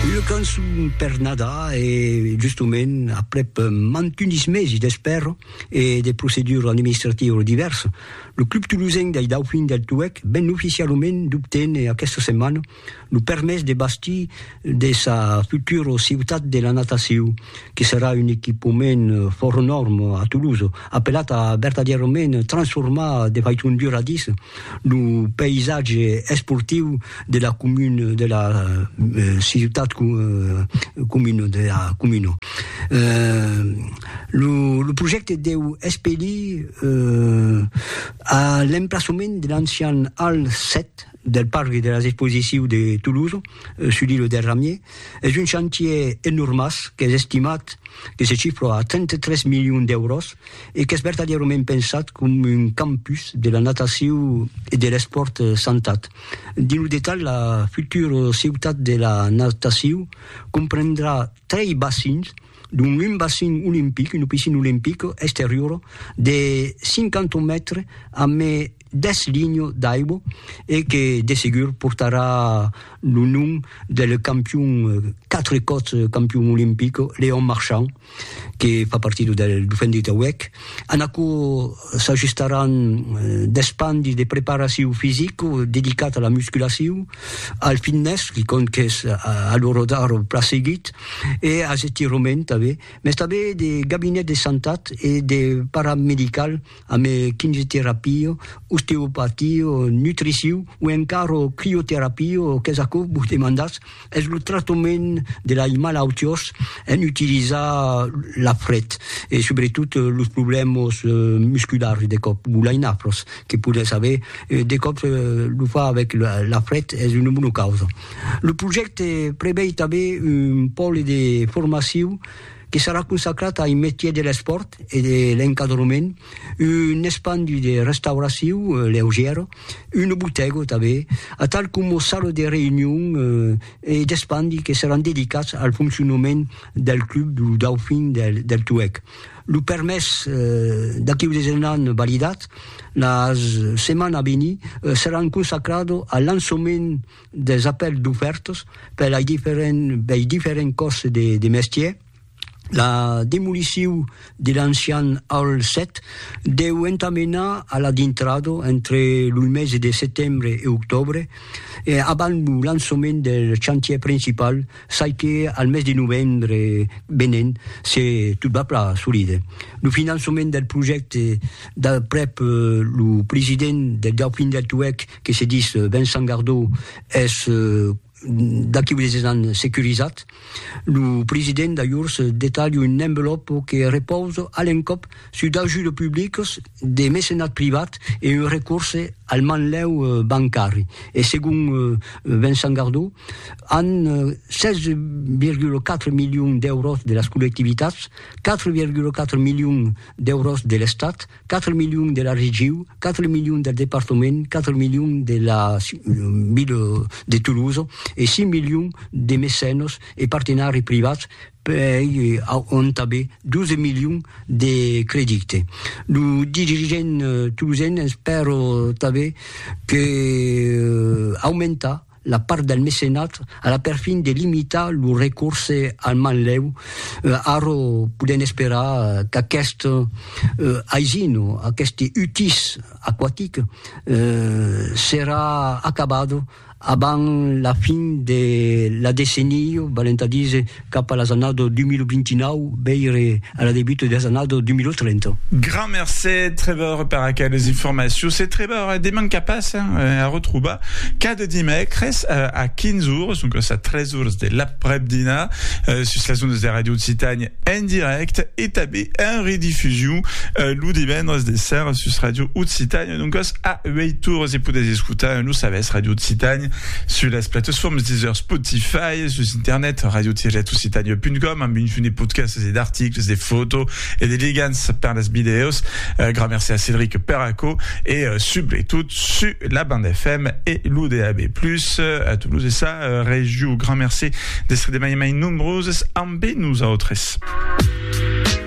Una cançon per Nadar e justement aprèp mantunis mesi d'espèra e de proceduras administrativas divèrsas, lo Club Tolosenc dei Daufins del Tuèlh ven oficialament d'obténer aquesta setmana lo permés de bastir de sa futura Ciutat de la Natacion, que serà un equipament fòra nòrma a Tolosa. apelat a vertadièrament transformar de faiton duradís lo païsatge esportiu de la comuna, de la ciutat comuna, de la comuna. Lo projècte deu espelir a l'emplaçament de l'ancian Hal 7 del parc de las exposicius de Toulouse, sus l'îlot del Ramier, es un chantier enormàs qu'es estimat, que se chifra a 33 milions d'èuros e qu'es vertadièrament pensat com un campus de la nataciu e de l'espòrt santat. Dins lo detalh, la futura ciutat de la nataciu comprendrà trei bacins, dont un bacin olimpic, una piscina olimpica exteriora de 50 mètres amé deth linho d'aibo e que de segur portarà lo nom del campion, quatre còps campion olimpic, Léon Marchand, que fa partida del Dauphin de Tauèc. En aquò s'ajustaràn deth pan de preparacion fisica dedicat a la musculacion, al fitness, que compte qu'es a l'ora d'ara plan seguit, e as estirament tanben, mès tanben de gabinet de santat e de paramedical, ame quimioterapio, osteopatio, nutriciu o encara crioterapio, qu'es aquò vos demandatz, es lo tractament de lai malautiós en utilizar la fret e subretot los problèmas musculars de còp o lai nafros que podètz aver, de còp lo far avèc la fret es una bona causa. Lo projècte prevei tanben un pòle de formaciu, que serà consacrat ai metier de l'espòrt e de l'encadrement, un espandi de restauraciu leugièra, una botèga tanben, atal coma sala de reünion e d'espandi que seràn dedicats al foncionament del club du Dauphin del Tuèg. Lo permés d'aquiu desenant validat, la setmana a venir seràn consacrada al lançament. des apèls d'ofèrtas per lei diferents bei diferents còrses de de mestièr la demoliciu de l'ancian Hall 7 deu entamenar a la dintrada entre lo mesi de setembre e octòbre e abans lo lançament del chantièr principal çai que al mes de novembre venent se tot va plan solide lo finançament del projècte d'aprèp lo president del Dauphin del Tuèlh que se dis Vincent Gardó es d'aquí unes 10 ans securizat, lo president d'ajors detalha un envelòpo que repausa a l'encòp sus d'ajudes publicas, de mecenat privat e un recorse al manlèu bancari. E segon Vincent Gardó, an 16,4 milions d'èuros de las collectivitats, 4,4 milions d'èuros de l'Estat, 4 milions de la regiu, 4 milions del departament, 4 milions de la ville de Toulouse e 6 milions de mecenos e partenari privats pei auntabe 12 milions de credite. Lo dirigent toulousen espèro tanbe que aumentar la part del mecenat a la perfin de limitar lo recorse al manlèu, ara podèm esperar qu'aquest aisin, aqueste utís aquatic serà acabat abans la fin de la decenia, valent a díser cap a las annadas 2029 veire a la debuta de las annadas 2030. Grand mercé Trevor per aqueles informacions e Trevor deman qu'a pas a retrobar cada dimècres a 15 ores doncas a 3 ores de l'aprèp-dinar sus las ondas de Radio Occitània en dirècte e tanben en redifusion lo divendres de sèra sus Radio Occitània. Doncas, a uèi torres e podètz escotar lo sabèth Ràdio Occitània sus las platesformes Deezer, Spotify e sus internet radio-occitania.com amb un fum de podcasts e d'articles, de fòtos e de ligants per las vidèos. Gran merci a Cédric per aquò e subretot sus la band FM e lo DAB+, a Toulouse e sa regió. Gran merci d'èstre de mai en mai nombroses ambe nosautres.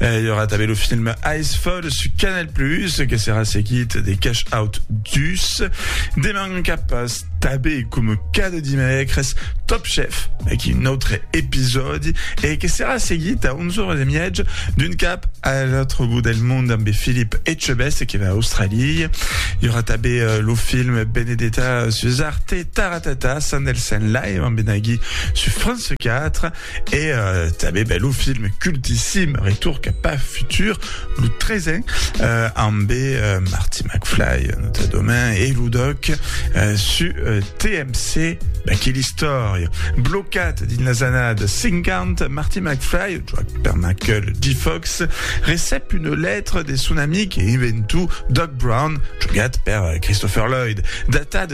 Eh, y aura també lo film Icefall su Canal Plus, que serà seguit de Cash Out 2. Deman cap pas tabé com cada dimècres Top Chef, aquí un autre episòdi, e que serà seguit a 11 hores de miètge d'un cap a l'autre bout del mond amb Philippe Etchebest qui va a Australie. Y aura també uh, lo film Benedetta su Zarte Taratata, Sandelsen Live amb Benagui su France 4. E tanben, ben, lo film cultissim Retour cap a futur, lo tresen, ambe Marty McFly, notadament, e lo doc su TMC, ben, que l'istòria. Blocat dins las annadas 50, Marty McFly, joat per Michael J. Fox, recep una letra de son amic e inventor Doc Brown, jogat per Christopher Lloyd, datada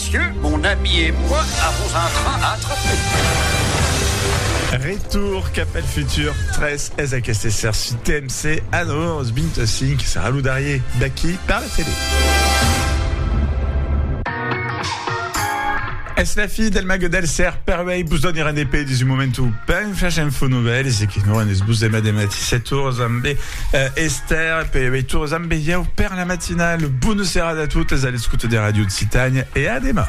Messieu, mon ami et moi avons un train à attraper. Retour cap el futur 3 es aquest exercici TMC a 9h25. Serà lo darrier d'aquí per la tele. Es la fi del mag del ser per uèi vos doni rendez-vous dins un moment o ben fach info novèls e que non rendez-vos demà de matí 7 oras amb Esther, pe veitures amb veieu per la matinale. Bona serada a totes a l'escuta de Radio Occitània e a demà.